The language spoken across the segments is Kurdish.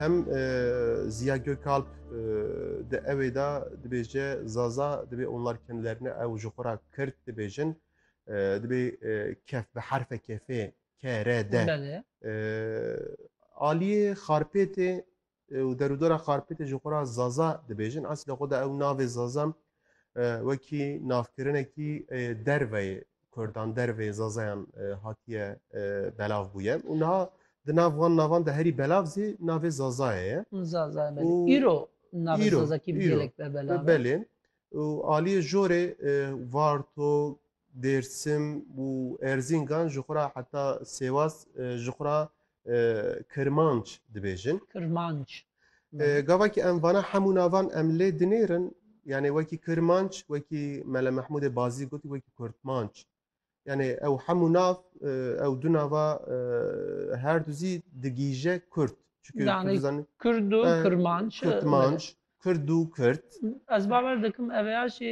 Hem Ziya Gökalp di ewê de dibêje Zaza dibê onlar kendilerine ew ji xwe re Kirt dibêjin. Dibê kef bi herfe kefê ke re de. Aliyê Xarpêtê û derûdora Xarpêtê ji xwe re Zaza dibêjin. Eslê xwe de ew navê Zaza wekî navkirinekî derveyê Kurdan derveyê Zazayan hatiye belav bûye û niha di nav wan navan de herî belav zî navê Zazayê ye. Zaza belê. Îro navê Zazakî gelek be belav. Belê. Û aliyê jorê Varto, Dêrsim û Erzîngan ji xwe re heta Sêwaz ji xwe re Kirmanc dibêjin. Kirmanc. Gavakî em vana hemû navan em lê dinêrin yanê wekî Kirmanc wekî Mele Mehmûdê Bazî gotî wekî Kurtmanc. Yanê ew hemû nav ew du nava her du zî digîje Kurd. Kurd û Kirmanc. Kurtmanc. Kurd û Kurd. Ez bawer dikim ev ê ya jî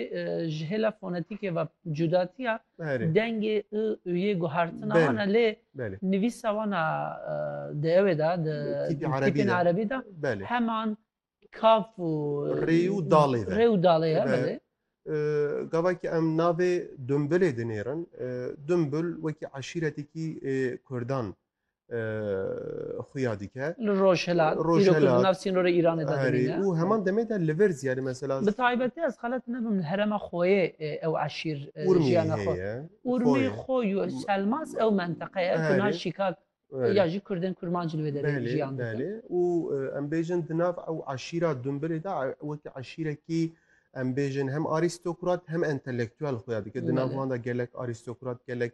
ji hêla fonetîkê ve cudatiya Berê. dengê i û yê guhertina Belê. wan e lê Belê. nivîsa wan a e, di ewê de di Tîpî di erebî tîpên de. erebî de Belê. heman kaf û Rê û dalê ve. rê û dalê ye Ve. belê. E, Gavakî em navê Dumbilê dinêrin. E, Dumbil wekî eşîretekî e, Kurdan xuya dike. Li Rojhilat, îro ku di nav sînorê Îranê de dimîne. Û heman demê de li vir ziyarî mesela. Bi taybetî ez xelet nebim li herêma Xoyê ew eşîr jiyana xwe. Urmî, Xoy û Selmaz ew menteqe ye ku niha Şîkak ya jî Kurdên Kurmanc li wê derê jiyan dikin. Belê, belê. Û em bêjin di nav ew eşîra Dumbilê de wekî eşîrekî em bêjin hem arîstokrat hem entelektuel xuya dike. Di nav wan de gelek arîstokrat gelek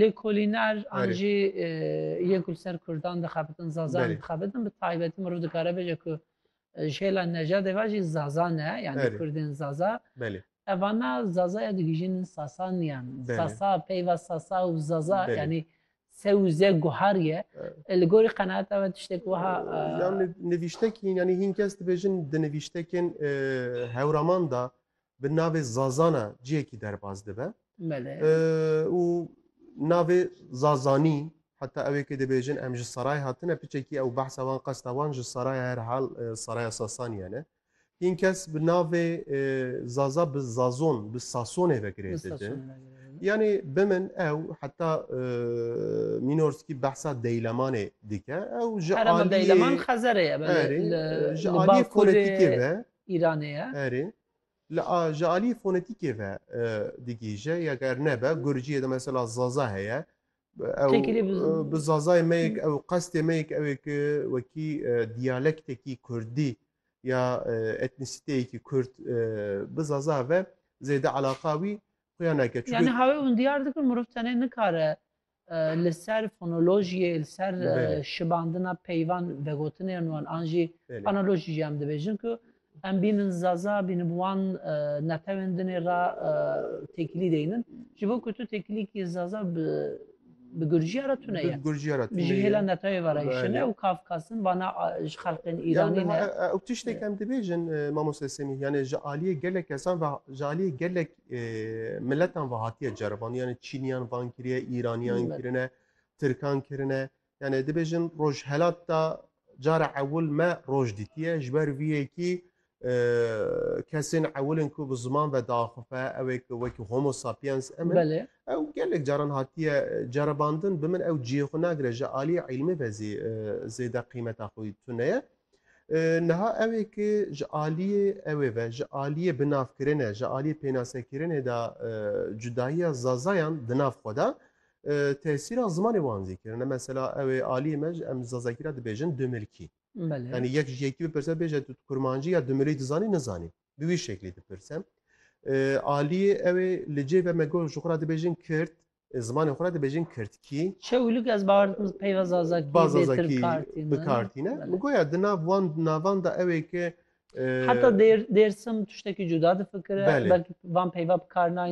Lêkolîner an jî yek li ser Kurdan dixebitin, Zazan dixebitin. Bi taybetî mirov dikare bêje ku ji hêla nejadê ve jî Zaza ne, yanî Kurdên Zaza. Evana Zaza ya digihîjînin Sasaniyan. Sasa, peyva Sasa û Zaza yanî se û ze guhar ye. Li gorî qenaeta we tiştek wiha. Nivîştekî yanî hîn kes dibêjin di nivîştekên hewraman de bi navê Zazana ciyekî derbas dibe û navê Zazanî heta ew ê kê dibêjin em ji Saray hatine piçekî ew behsa wan qesta wan ji Saraya herhal Saraya Sasaniye ne. Hîn kes bi navê Zaza bi Zazon bi Sasonê vekirê didin. Yani bi min ew heta Mînorskî behsa deylemanê dike ew ji aliyê xezerê ji aliyê fonetîkê ve Îranê ye. Erê. Li a ji aliyê fonetîkê ve digihîje ya ger nebe gurciyê de mesela zaza heye bi zazayê me yek ew qestê me yek ew ki wekî diyalektekî kurdî ya etnisîteyekî kurd bi zaza ve zêde eleqa wî xuya neke. Yani hawê hûn diyar dikin mirov tenê nikare Li ser fonolojiyê, li ser şibandina peyvan vegotinên wan an jî analojî jî em dibêjin ku em bînin zaza bînin wan netewên dinê re têkilî deynin. Ji bo ku tu têkilîkî zaza bi bi gurcîya re tune ye. Gurcîya re tune ye. Ji hêla netewê ve re hişine û kafkasin vana ji xelqên Îranî ne. Ew tiştê em dibêjin mamoste Semîh yanê ji aliyê gelek kesan ve ji aliyê gelek Miletan ve hatiye ceriban yani Çîniyan van kiriye, Îraniyan kirine, Tirkan kirine. Yani dibêjin rojhelat da cara ewil me roj dîtiye ji ber vî yekî kesên ewilin ku bi ziman ve daxife ewê ku wekî homo sapiens em ew gelek caran hatiye ceribandin bi min ew ciyê xwe nagire ji aliyê îlmê ve zî zêde qîmeta xwe tune ye. Niha ew ê ki ji aliyê ew ê ve, ji aliyê binavkirine, ji aliyê pênasekirinê de cudayiya Zazayan di nav xwe de tesîra zimanê wan zî kirine. Mesela ew ê aliyê me ji em Zazakî re dibêjin dumilkî. Yanî yek ji yekî bipirse bêje tu kurmancî ya dumilî dizanî nizanî. Bi wî şeklî dipirse. Aliyê ew ê li cê ve me got ji xwe re dibêjin kird, zimanê xwe re dibêjin kirdkî. Çewlik ez bawer dikim peyva zazakî Ba bêtir Zazakî bikartîne. bikartîne. Belê. Min got ya di nav wan navan de ew ê ki e, Heta Dêr- Dêrsim tiştekî cuda difikire. Belê. Belkî van peyva bikar nayên